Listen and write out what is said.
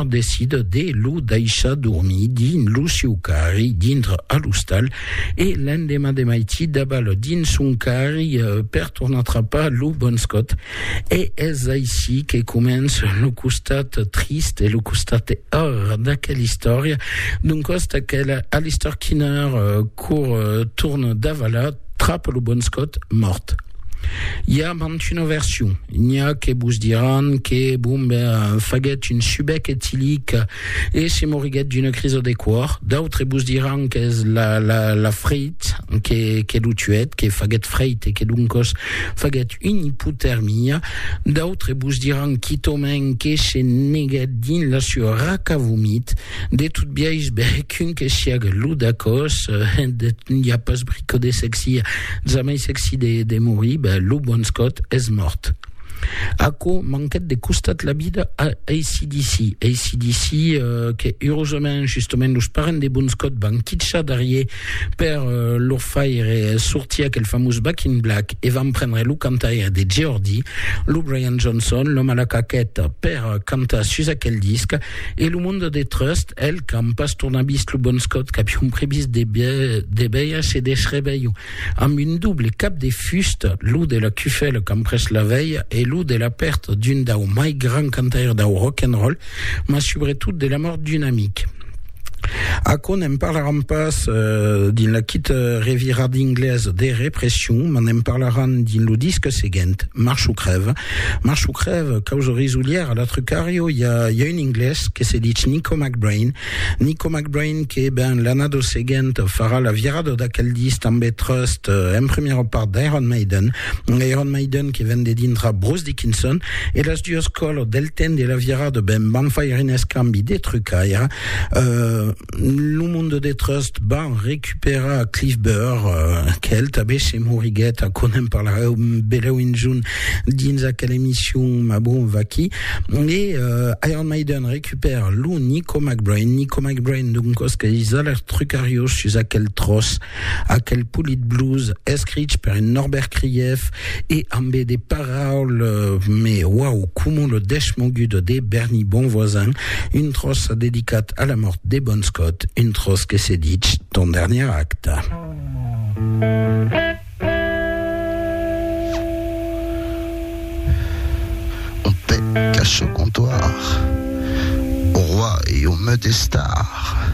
decide de lo daishar dormir dins lo siu carri dintre a l'ostal e l'endemà de maití dabal dins son carri per tornar trapar lo bon scot. E es aicí que comença lo costat trist e lo costat or d'aquela istòria, d'un cost aquela Alistair Kinner cour torna davalar trapa lo bon scot mòrt. I a mantun una version. N'i a que vos diràn que, bon, ben, faguèt un subec etilic e se moriguèt d'una crisa de còr. D'autres vos diràn qu'es la, la, la freit que, que lo tuèt, que faguèt freit e que doncòs faguèt una ipotermia. D'autres vos diràn quitòmèn que se neguèt dins la sua raca vomit. De tot biais, bèc un que siague lo d'acòs, n'i a pas brico de sexi, jamai sexi de morir, ben, lo bon Scott es mòrt. Aquò manquèt de costat la vida a ACDC. ACDC que, urosament, justament los parents de bon Scott van quitchar darrier per lor faire sortir aquel famós Back in Black e van prendre lo cantaire de Geordie, lo Brian Johnson, l'òme a la caqueta, per cantar sus aquel disc. E lo monde de trust, el, qu'an pas tornat vist lo bon Scott, qu'avion previst de veir se desrevelhon amb un doble cap de fusta, lo de la cufèla qu'an pres la velha e lo de la pèrta d'un dau mai grand cantaire dau rock and roll, mas subretot de la mòrt d'un amic. Aquò ne'n parlaràn pas dins la quita revirada inglesa de Repression, mas ne'n parlaràn dins lo disc seguent, March o crèva, Mas çò crèv, causa risolièra, la Trucario, i a un inglés que se dich Nico McBrain, Nico McBrain que, ben, l'annada seguent farà la virada d'aquel disc tanbe trust en primièra part d'Iron Maiden, Iron Maiden que ven de dintra Bruce Dickinson, e las duas còlas del temps de la virada, ben, van faire un escambi de trucaire. Lo monde de Trust van recuperar Cliff Burr, quel tanben se moriguèt, aquò n'en parlarèu belèu enjun dins aquela emission, mas bon, vaquí. E Iron Maiden recupèra lo Nico McBrain, Nico McBrain, d'un cosque, es a lèr trucariós sus aquel tròç. Aquel politblues escrich per un Norbert Krief e ambe de paraules me uau coma lo deschmogudo de Berny Bonvoisin, un tròç dedicat a la mòrt de Bon Scott, un tròç que se dich Ton dernier acte. On te cache au comptoir, au roi et au meut estar.